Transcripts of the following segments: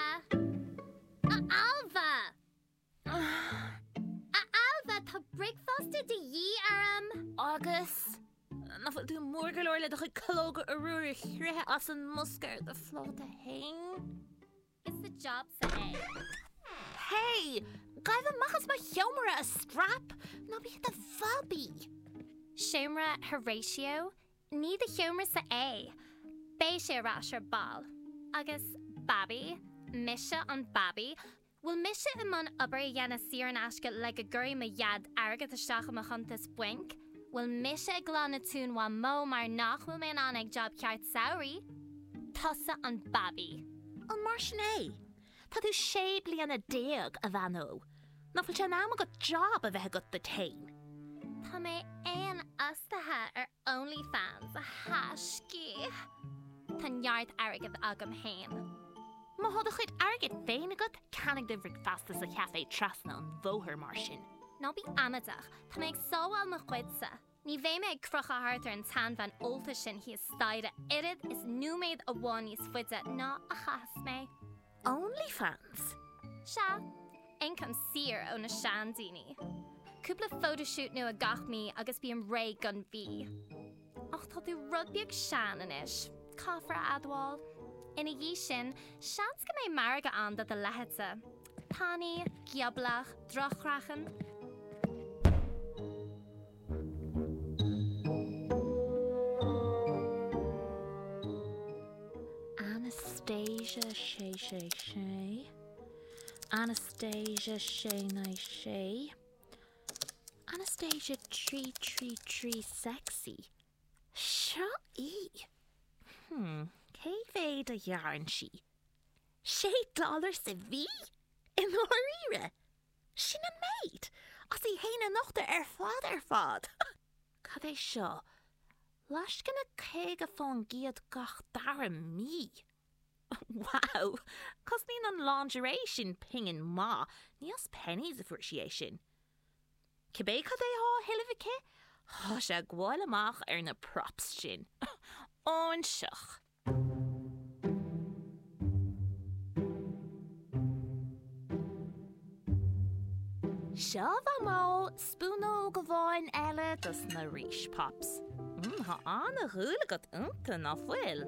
A Ailbhe! A Ailbhe, tá bricfeasta de dhíth orm! Agus nach bhfuil tú mór go leor le do chuid calóga arbhair a chroitheadh as an mbosca ar do phláta féin. Is é do job san é. Hey! Gabh amach as mo sheomra, a straip! Ná bí i do bhabaí! Seomra Horatio Ní do sheomra-sa é. Beidh sé ar ais ar ball. Agus Babaí? Mise an Babaí? Bhfuil mise i mbun obair a dhéanamh saor in aisce le go gcuirfidh mo Dhaid airgead isteach i mo chuntas bainc? Bhfuil mise ag glanadh tóin Mhamó mar nach bhfuil mé in ann ag jab ceart samhraidh? Tusa an Babaí. An mar sin é? Tá tú sé bliana déag, a bhean ó, nach bhfuil sé in am agat job a bheith agat duit fhéin? Tá mé féinfhostaithe ar Onlyfans, a thaisce. Tá neart airgead agam fhéin. Má thá do chuid airgid féin agat, ceannaigh do bhricfeasta sa chafé trasna an bhóthair mar sin. Ná bí amaideach, tá mé ag sábháil mo chuidse. Ní bheidh mé ag crochadh thart ar an tseanbhean ólta sin thíos staighre oiread is nóiméad amháin níos faide ná a chaitheas mé. OnlyFans? Sea, ioncam saor ó na seandaoine. Cúpla photoshoot nua gach mí agus bím réidh don mhí. Ach tá tú rud beag sean anois, caithfear a admháil. Ina dhiaidh sin, seans go mbeidh margadh ann do do leithéidse. tanaí, gioblach, droch-chraiceann. Anastasia Sé Sé Sé Anastasia Sé Naoi Sé Anastasia trí trí trí sexy Seo í Hmm céard a ghearrann sí? Sé dollar sa mhí? I ndáiríre? Sin an méid? As í fhéin a nochtadh ar fad ar fad! Cad é seo? Lascaine caoga fán gcéad gach dara mí? Wow! Cosnaíonn an lingerie sin pingin maith, ní as Penneys a fuair sí é sin. Cibé cad é thá a thuilleamh aici, thá sé ag gabháil amach ar na props sin. Óinseach! Seo bíodh spúnóg amháin eile dos na Rís Pops. Mmm, tá an-dhúil agat iontu, ná fuil?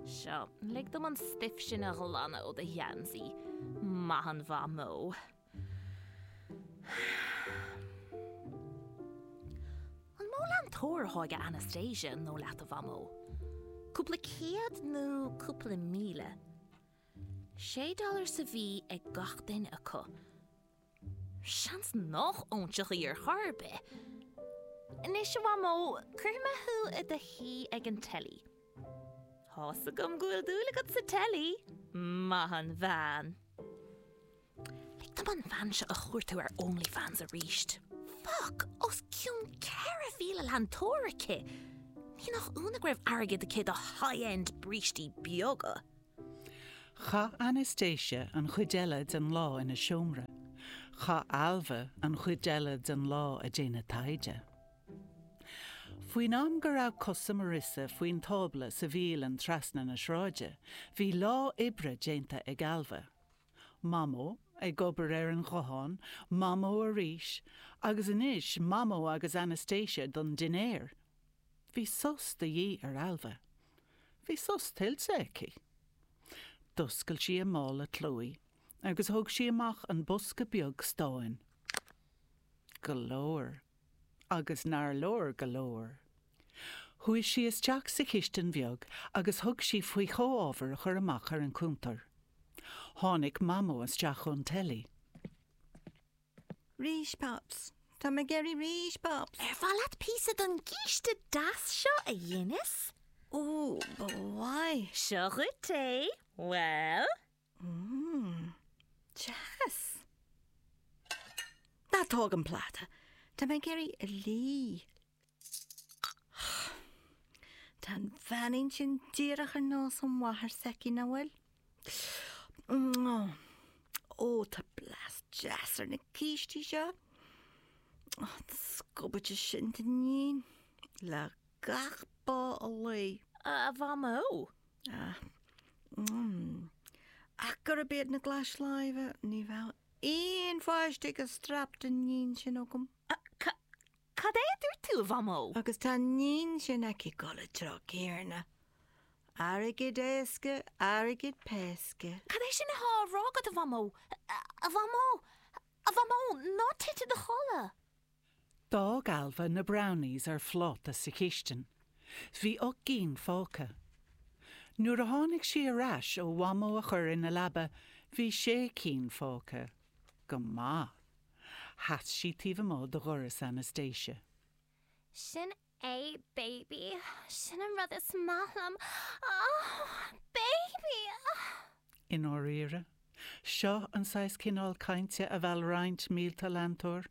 Seo, lig dom an stuif sin a ghlanadh ó do gheansaí, maith an Mhamó! An mó leantóir atá ag Anastasia an dóigh leat a Mhamó? Cúpla céad nó cúpla míle? Sé dollar sa mhí ag gach duine acu. Seans nach óinseach í ar chor ar bith. Anois a mhamó, cuirfidh mé thú i do shuí ag an teilí. Tá's agam go bhfuil dúil agat sa teilí, maith an bhean. Lig dom an bhean seo a chuartú ar OnlyFans arís. Fuck! Os cionn 4,000 leantóir aici! Ní nach ionadh go raibh airgead aici do high-end brístí beaga! Chaith Anastasia an chuid eile den lá ina seomra. Chaith Ailbhe an chuid eile den lá ag déanamh taighde. Faoin am go raibh cosa Marissa faoin tábla sa bhialann trasna na sráide, bhí lá oibre déanta ag Ailbhe. Mamó ag obair ar an ghuthán, Mamó arís, agus anois Mamó agus Anastasia don dinnéar. Bhí sos de dhíth ar Ailbhe. Bhí sos tuillte aici. D'oscail sí a mála Chloé agus thóg sí amach an bosca beag stáin. Go leor. Agus nár leor go leor. Chuaigh sí isteach sa chistin bheag agus thug sí faoi chomhábhair a chur amach ar an gcuntar. Tháinig Mamó isteach ón teilí. Rís Pops! Tá mé ag iarraidh rís Pops! Ar mhaith leat píosa den gcíste deas seo a dheineas? Ó, ba mhaith! Seo dhuit é. Bhuel? Mmm. Deas! Ná tóg an pláta. Tá mé ag iarraidh é a lí. Tá an bheainín sin díreach ar nós an mháthair s'aici, ná bhfuil? Mmm. Ó, tá blas deas ar na cístí seo. Ó, an scubaid sin d'iníon, le gach bá a luí. A Mhamó, Ach gurb iad na glais láimhe, ní bheadh aon pháiste ag an straip d'iníon sin agam. Cad é a dúirt tú, a Mhamó? Agus tá an iníon sin aici ag dul an treo céanna. Airgead éasca, airgead péasca. Cad é sin atá á rá agat, a Mhamó? A Mhamó! A Mhamó! Ná tit i do chodladh! D'fhág Ailbhe na brownies ar phláta sa chistin. Bhí ocht gcinn fágtha. Nuair a tháinig sí ar ais ó Mhamó a chur ina leaba bhí sé cinn fágtha. Go maith. Sheas sí taobh amuigh de dhoras Anastasia. Sin A baby, sin an rud is maith liom, oh baby, oh. I ndáiríre? Seo an saghas cineál cainte a mheall roinnt mílte leantóir?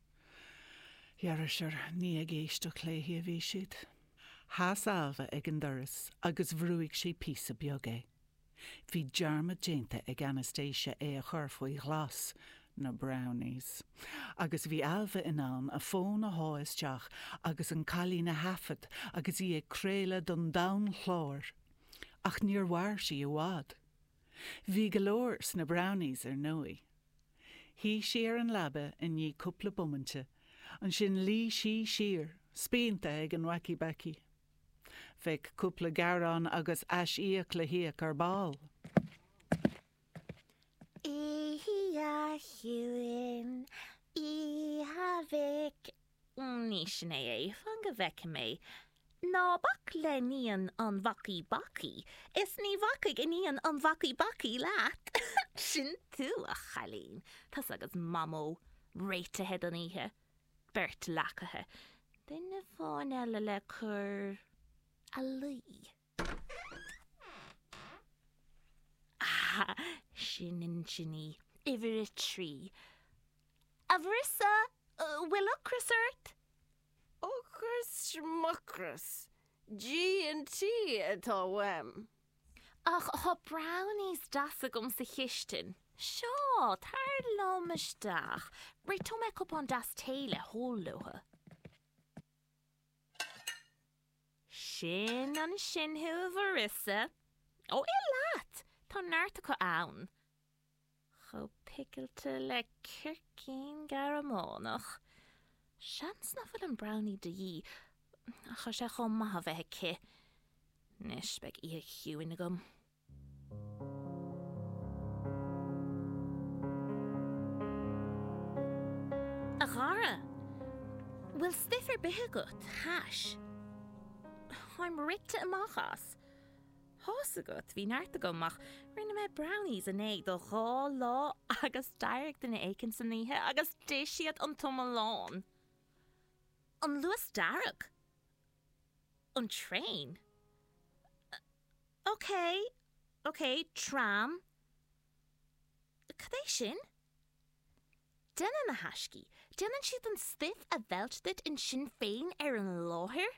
Dhera sure, ní ag éisteacht léi a bhí siad. Sheas Ailbhe ag an doras agus bhrúigh sí píosa beag é. Bhí dearmad déanta ag Anastasia é a chur faoi ghlas na Brownies agus bhí Ailbhe in ann a fón a shá isteach agus an cailín a thaifead agus í ag craoladh don domhan chláir, ach níor mhair sí i bhfad. Bhí go leor sna Brownies ar ndóigh. Shuigh sí ar an leaba i ndiaidh cúpla bomainte, ansin luigh sí siar, spíonta ag an Wacky Baccy. Bheadh cúpla gearán agus aisíoc le híoc ar ball. Oíche chiúin, oíche Mhic. Ní sin é é fan go bhfeicfidh mé. Ná bac le hiníon an Bhacaí Bacaí is ní bhacfaidh iníon an Bhacaí Bacaí leat. Sin tú, a chailín. Tusa agus Mamó réitithe don oíche. beirt leacaithe, duine amháin eile le cur a luí. Ah, sin ansin í, uimhir a trí. A Mharissa, bhfuil ocras ort? Ocras, Schmucras, G&T atá uaim. Ach tá brownies deas agam sa chistin. Seo, tar liom isteach. Réiteoidh mé cupán deas tae le hól leotha. Sin ansin thú, a Mharissa. Ó, ith leat! Tá neart acu ann. chomh picilte le gircín Gearmánach. Seans nach bhfuil an brownie de dhíth, ach tá sé chomh maith a bheith aici. Anois beidh oíche chiúin agam. A Dhara, bhfuil stuif ar bith agat? Hash? Táim rite amach as. Tá's agat, bhí neart agam ach rinne mé brownies inné do dhá lá agus d'éirigh duine éicint san oíche agus d'ith siad an t-iomlán! An luas dearg? An traein? Ok, ok, tram? Cad é sin? Déanann na haistí, déanann siad an stuif a mheilt duit ansin féin ar an láthair?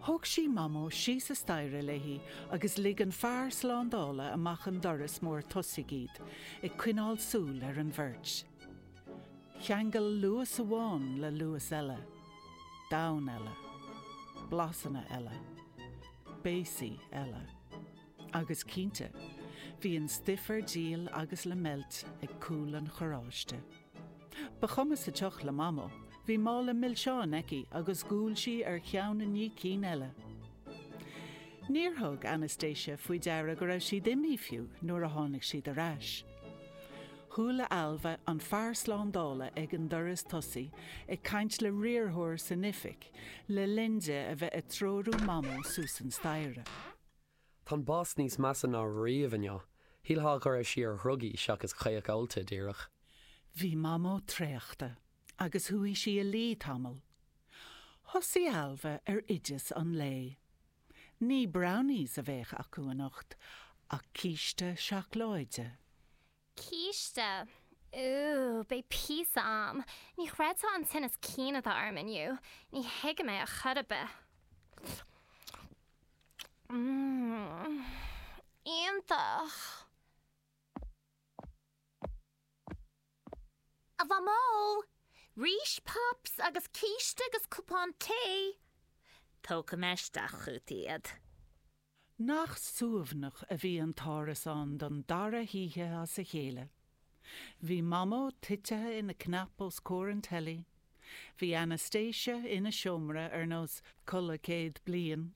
Thóg sí Mamó síos an staighre léi agus lig an fear slándála amach an doras mór tosaigh iad, ag coinneáil súil ar an bheirt. Cheangail Luas amháin le Luas eile. Domhan eile. Blasanna eile. Béasaí eile. Agus cinnte, bhí an stuif ar díol agus le meilt ag cúl an charráiste. Ba chuma sa tsioc le Mamó, bhí mála milseáin aici agus dhiúl sí ar cheann i ndiaidh cinn eile. Níor thug Anastasia faoi deara go raibh siad imithe fiú nuair a tháinig siad ar ais. Chuala Ailbhe an fear slándála ag an doras tosaigh ag caint le riarthóir san oifig le linn di a bheith ag treorú Mamó suas an staighre. Tá an boss níos measa ná riamh inniu. Shílfeá go raibh sí ar dhrugaí seachas caoch ólta díreach. Bhí Mamó traochta agus chuaigh sí i luí tamall. Thosaigh Ailbhe ar oideas an lae. Ní brownies a bheadh acu anocht ach císte seacláide. Císte, Ooh, beidh píosa a'm. Ní chreidfeá an tinneas cinn atá orm inniu. Ní thuigim é ar chor ar bith. Mmm, iontach! A Mhamó, rís pops agus císte agus cupán tae. Tógfaidh mé isteach chugat iad. Nach suaimhneach a bhí an t-árasán don dara hoíche as a chéile. Bhí Mamó titithe ina cnap os comhair an teilí, bhí Anastasia ina seomra ar nós Codladh Céad Bliain,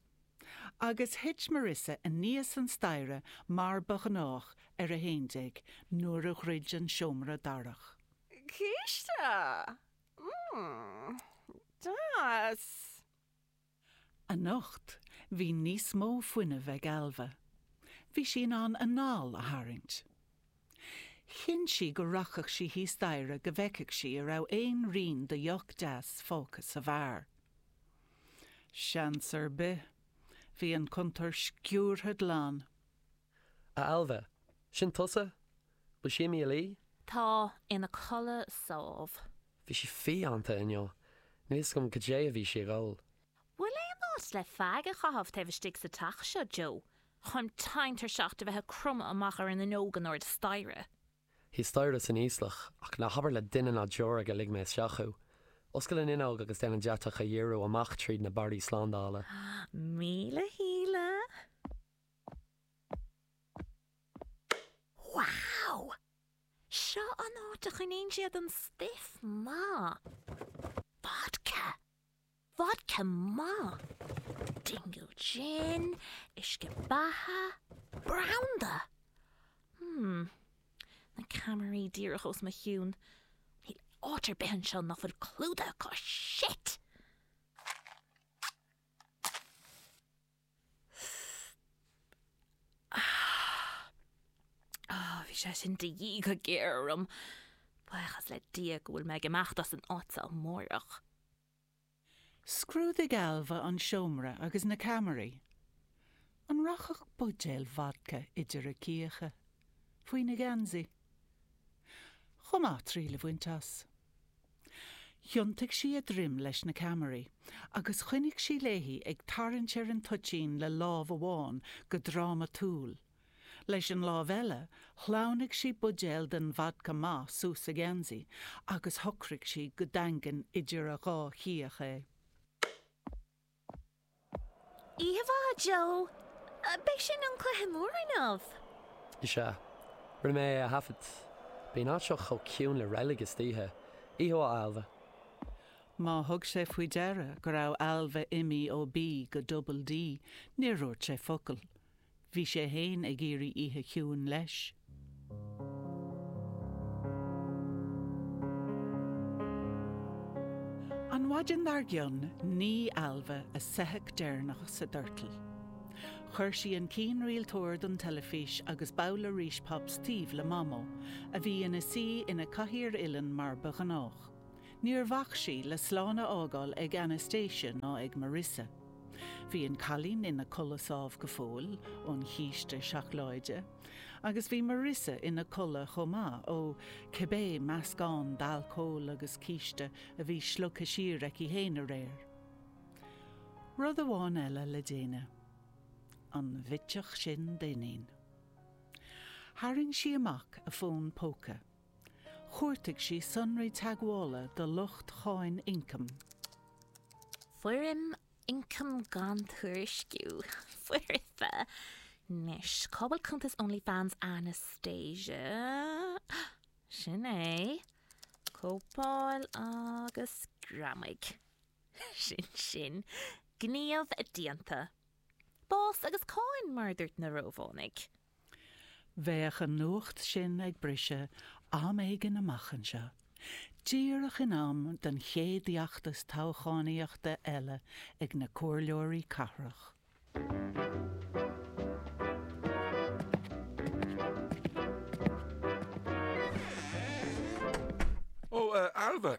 agus thit Marissa aníos an staighre mar ba ghnách ar a haon déag nuair a dhruid an seomra darach. Císte! Mmm. Deas! Anocht bhí níos mó fuinnimh ag Ailbhe. Bhí sí in ann a hanáil a tharraingt. Chinn sí go rachadh sí thíos staighre go bhfeicfeadh sí an raibh aon rian de dheoch deas fágtha sa bheár. Seans ar bith, bhí an cuntar sciúrtha glan. A Ailbhe, sin tusa? Bhfuil sí imithe a luí? Tá, ina codladh sámh. Bhí sí fiánta inniu. Níl fhios agam goidé a bhí sí ag ól. Bhfuil aon áit le feaig a chaitheamh taobh istigh sa teach seo, Joe, táim tinn tuirseach de bheith ag cromadh amach ar an fhuinneog in airde staighre? Thíos staighre san íoslach, ach ná habair le duine ná deoraí gur lig mé isteach thú. Oscail an fhuinneog agus déan an deatach a dhíriú amach tríd na barraí slándála. Míle shíle! Wow! Seo an áit a choinníonn siad an stuif maith. Vodka! Vodka maith! Dingle Gin, uisce beatha, branda! Hmm. Na ceamaraí díreach os mo chionn. Níl áit ar bith anseo nach bhfuil clúdaithe acu. Shit! Ah, bhí sé sin de dhíth go géar orm. Buíochas le Dia go bhfuil mé ag imeacht as an áit seo amárach. Scrúdaigh Ailbhe an seomra agus na ceamaraí. An rachadh buidéal vodca idir a cíocha? Faoina geansaí? Chomh maith triail a bhaint as. Thiontaigh sí a droim leis na ceamaraí agus choinnigh sí léi ag tarraingt ar an toitín le lámh amháin go drámatúil. Leis an lámh eile, shleamhnaigh sí buidéal den vodca maith suas a geansaí agus shocraigh sí go daingean idir a dhá cíoch é. Oíche mhaith, Joe. Beidh sin an cluiche mór, an ea. Is ea. Rinne mé é a thaifeadadh. Bíonn an áit seo chomh ciúin le reilig istoíche. Oíche mhaith, Ailbhe. Má thug sé faoi deara go raibh Ailbhe imithe ó B go Double D, níor dhúirt sé focal. Bhí sé fhéin ag iarraidh oíche chiúin leis. An mhaidin dar gcionn nigh Ailbhe a soitheach deireanach sa doirteal. Chuir sí an cianrialtóir don teilifís agus babhla Rice Pops taobh le Mamó, a bhí ina suí ina cathaoir uilleann mar ba ghnách. Níor bhac sí le slán a fhágáil ag Anastasia ná ag Marisa. Bhí an cailín ina codladh sámh go fóill ón chíste seacláide, agus bhí Marisa ina codladh chomh maith, ó cibé meascán d'alcól agus císte a bhí slogtha siar aici fhéin aréir. Rud amháin eile le déanamh. An bhitseach sin d'iníon. Tharraing sí amach a fón póca. Chuartaigh sí sonraí teagmhála do lucht Cháin Ioncaim. Foirm ioncam gan tuairisciú, foirfe, anois. Cá bhfuil cuntas OnlyFans Anastasia? Sin é. Cóipeáil agus greamaigh. Sin sin. Gníomh déanta. Bás agus cáin, mar a dúirt na Rómhánaigh. Bheadh an nuacht sin ag briseadh am éigin amach anseo, díreach in am don chéad fheachtas toghchánaíochta eile ag na comhairleoirí cathrach. Ó, a Ailbhe!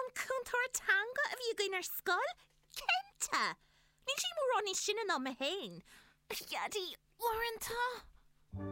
An cúntóir teanga a bhí againn ar scoil? Cinnte! Níl sí mórán níos sine ná mé féin, a Pheaidí, uaireanta!